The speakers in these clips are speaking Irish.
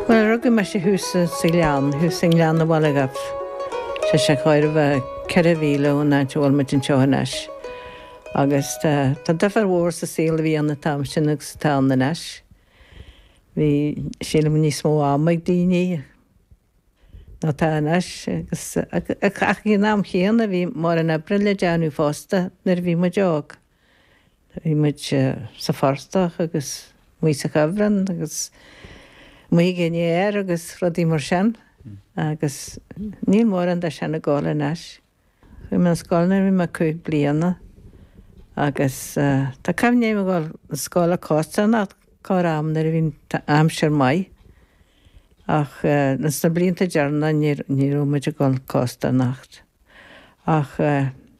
Bhuel, rugadh mise thuas sa Ghleann, thuas i nGleann an Bhaile Dhuibh, sé sin chóir a bheith ceithre mhíle ón áit a bhfuil muid anseo anois. Agus tá, tá difear mhór sa saol a bhí ann an t-am sin agus atá ann anois. Bhí, sílim, níos mó ama ag daoine ná atá anois agus ach ag an am chéanna bhí mórán oibre le déanamh fosta nuair a bhí muid óg. Bhí muid sa phortach agus muid sa chuibhreann agus muid ag an fhéar agus rudaí mar sin agus níl mórán de sin ag gabháil anois. Chuaigh mé 'na scoile nuair a bhí mé cúig bliana agus tá cuimhne agam ag dul 'na scoile costarnocht corr am nuair a bhí an aimsir maith ach sna blianta deireanacha ní raibh muid ag dul costarnocht ach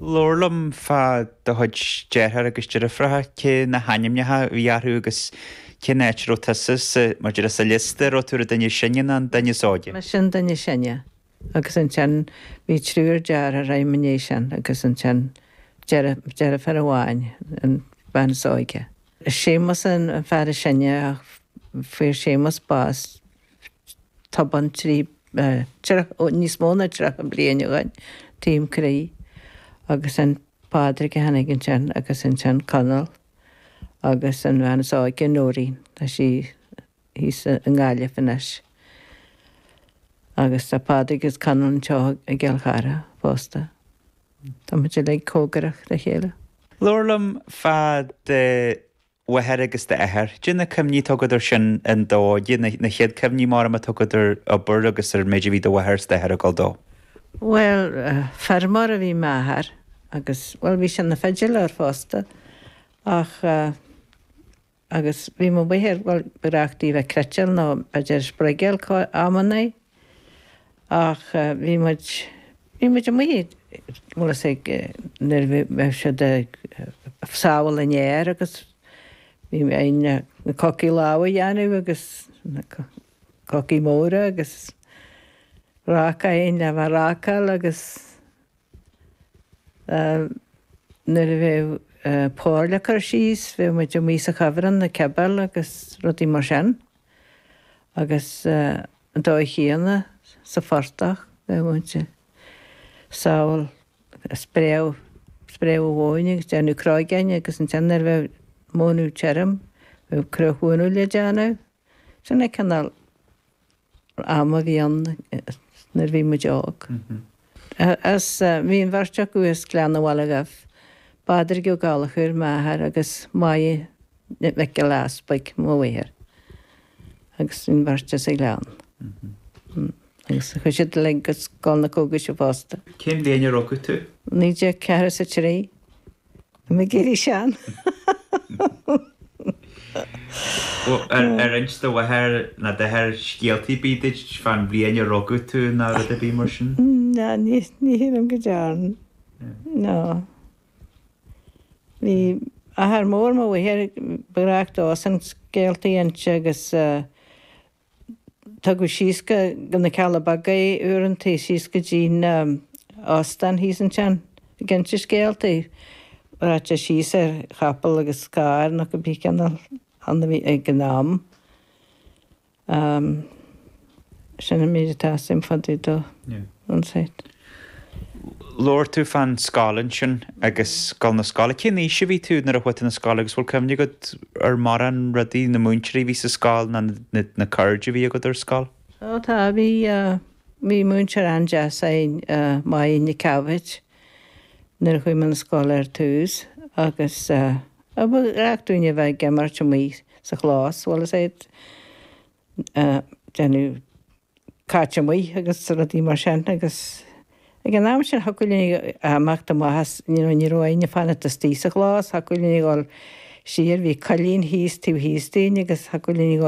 Labhair liom fá do chuid deartháir agus deirfiúracha cé na hainmneacha a bhí orthu agus cén áit a raibh tusa sa, mar a déarfá, sa liosta, raibh tú ar an duine is sine nó an duine is óige? Mise an duine is sine. Agus ansin bhí triúr deartháir agam ina dhiaidh sin agus ansin deirfiúr amháin, an bhean is óige. Séamus an fear is sine ach fuair Séamus bás tobann trí níos mó ná tríocha bliain ó shin, taom croí agus an Pádraig a tháinig ansin agus ansin Conall agus an bhean is óige Nóirín tá sí thíos i nGaillimh anois agus tá Pádraig is Conall anseo i gCill Chartha fosta. Tá muid uilig comhgarach le chéile. Labhair liom fá do mháthair agus d'athair. Dé na cuimhní atá agat ar sin an dó, dé na chéad cuimhní mar a bheadh atá agat ar obair agus ar an méid a bhí do mháthair is d'athair ag dul dó. Bhuel, feirmeoir a bhí i m'athair agus, bhuel, bhí sé ina pheidiléir fosta ach, agus bhí mo mháthair, bhuel, ba ghnách di a bheith ag cniotáil nó b'fhéidir ag spruigeáil cá, amannaí. Ach bhí muid, bhí muid amuigh ag, bhuel is ag, nuair a bhí siad ag sábháil an fhéir agus bhí againn le na cocaí láimhe a dhéanamh agus na cocaí móra agus ráca againn le bheith a' rácáil agus nuair a bheadh pór le cur síos bheadh muid amuigh sa chuibhreann a' cibeáil agus rudaí mar sin. agus an dóigh chéanna sa phortach bheadh móin le sábháil, spréadh, spréadh an mhóin agus déanamh cróigeáin agus ansin nuair a bheadh an mhóin tirim bheadh cruach mhónadh le déanamh. Sin an cineál ama a bhí ann nuair bhí muid óg. As Bhí an bheirt acu as Gleann an Bhaile Dhuibh, Pádraig Ó Gallchóir, m'athair, agus Máire Nic Giolla Easpaig, mo mháthair, agus bhí an bheirt as an Ghleann. Agus chuaigh siad uilig go Scoil na Cógaise fosta. Cén bhliain a rugadh tú? 1943. Tá mé ag éirí sean. Bhuel, ar inis do mháthair ná d'athair scéaltaí ar bith duit fán bhliain a rugadh tú ná rud ar bith mar sin? No, ní shílim go dearn. No. Bhí athair mór mo mháthar, ba ghnách dósan scéaltaí a inse agus Tugadh síos go na Cealla Beaga é uaireanta, síos go dtí na hóstáin thíos ansin ag inse scéalta. Rachadh sé síos ar chapall agus carr nó cibé cineál ann a bhí ag an am. Sin an méid atá a fhios agam fá dtaobh dó. An saothar. Labhair tú fán scoil ansin agus gabháil na scoile. Cén aois a bhí tú nuair a chuaigh tú na scoile agus bhfuil cuimhne agat ar mórán rudaí, na múinteoirí a bhí sa scoil ná na na cairde a bhí agat ar scoil? Ó tá, bhí, bhí múinteoir an-deas againn Máirín Nic Dhaibhéid nuair a chuaigh mé na scoile ar tús agus ba ghnách dúinn a bheith ag imirt amuigh sa chlós, bhuel is é déanamh cairt amuigh agus rudaí mar sin agus ag an am sin thiocfadh linn imeacht amach as you know ní raibh orainn fanacht istigh sa chlós thiocfadh linn dul siar bhí coillín thíos taobh thíos dínn agus thiocfadh linn